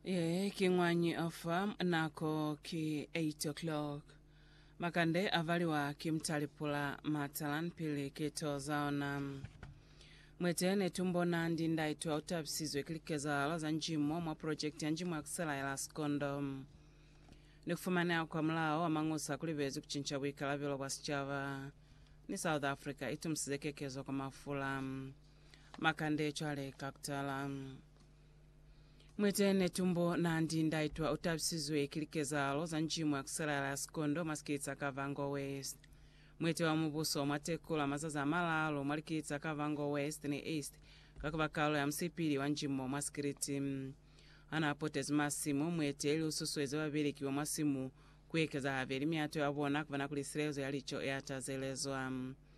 Ee, ki ngwañi ofa nako ki 8 o'clock. Makande a valiwa ki mutali pula matalan pili ki to za ona. Mwete ne tu mbona ndi ndai twa utabisizwe ki likezahalo za njimo mwa project ya njimo ya kusela ya la Sikondo. Ni kufumaneha kwa mulao wa mañusa kuli bezi kucinca buikalabelo bwa sicaba, ni South Africa itumusize kekezo kwa mafula. Makande cwale ka kutala. Mwitene tumbo nandi ndaitwa utabisizwe ki likezahalo za nji mwa kusalala ya sikondo mwa sikiliti sa Kavango West. Mwete wa mubuso mwa Tekula mazazi a malaalu mwa likiliti za Kavango West ni East ka kuba kalo ya musipili wa nji mo mwa sikiliti. Hana potezi masimu, mwete ili ususuezi babeleki ba mwa simu kuekeza habeli miato ya bona kubona kuli silelezo ya lico ea tazelezwa.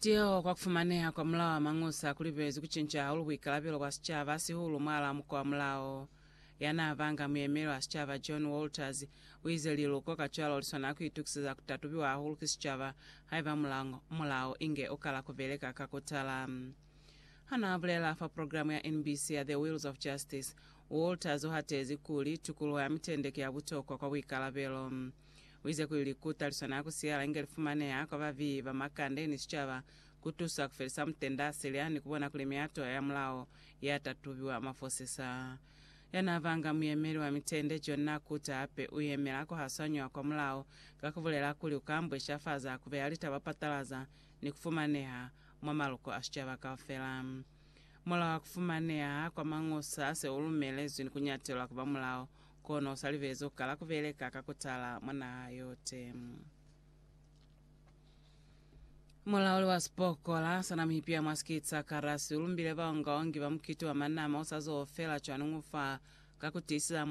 Tiho kwa kufumaneha kwa mulao wa mañusa kulibezi kucinca hahulu buikalabelo bwa sicaba sihulu mwalaa muko wa mulao. Yanaabanga muyemeli wa sicaba John Walters uize liluko kacwalo liswanela kuitukiseza kutatubiwa hahulu ki sicaba haiba mulao inge ukala kubeleka ka kutala. Hanaabulela fa programe ya NBC ya The Wheels of Justice, Walters uhatezi kuli, Tukuluho ya mitende ki ya butokwa kwa buikalabelo. Uize kuli ku taliswana ku siyala inge li fumaneha kwa ba viyi ba makande ni sicaba ku tusa ku felisa mutenda a silya ni ku bona kuli miyato ya mulao ya ta tubiwa mafosisa. Ya n'a banga muyemeli wa mitende, John n'a kuta hape u yemela ku hasanywa kwa mulao ka ku bulela kuli u ka ambweshafaza ku beya litaba patalaza ni ku fumaneha mwa maloko a sicaba kaufela. Mulao wa ku fumaneha kwa Mañosa se u lumelezwi ni ku nyatelwa ku ba mulao Kono u sa libezi ku kala ku beleka ka ku tala mwa naha yote. Mulauli wa sipokola sa Namibia mwa sikiti sa Karasi u lumbile baongaongi ba mukiti wa manama u sa zo fela cwani ufa ka ku tiiseza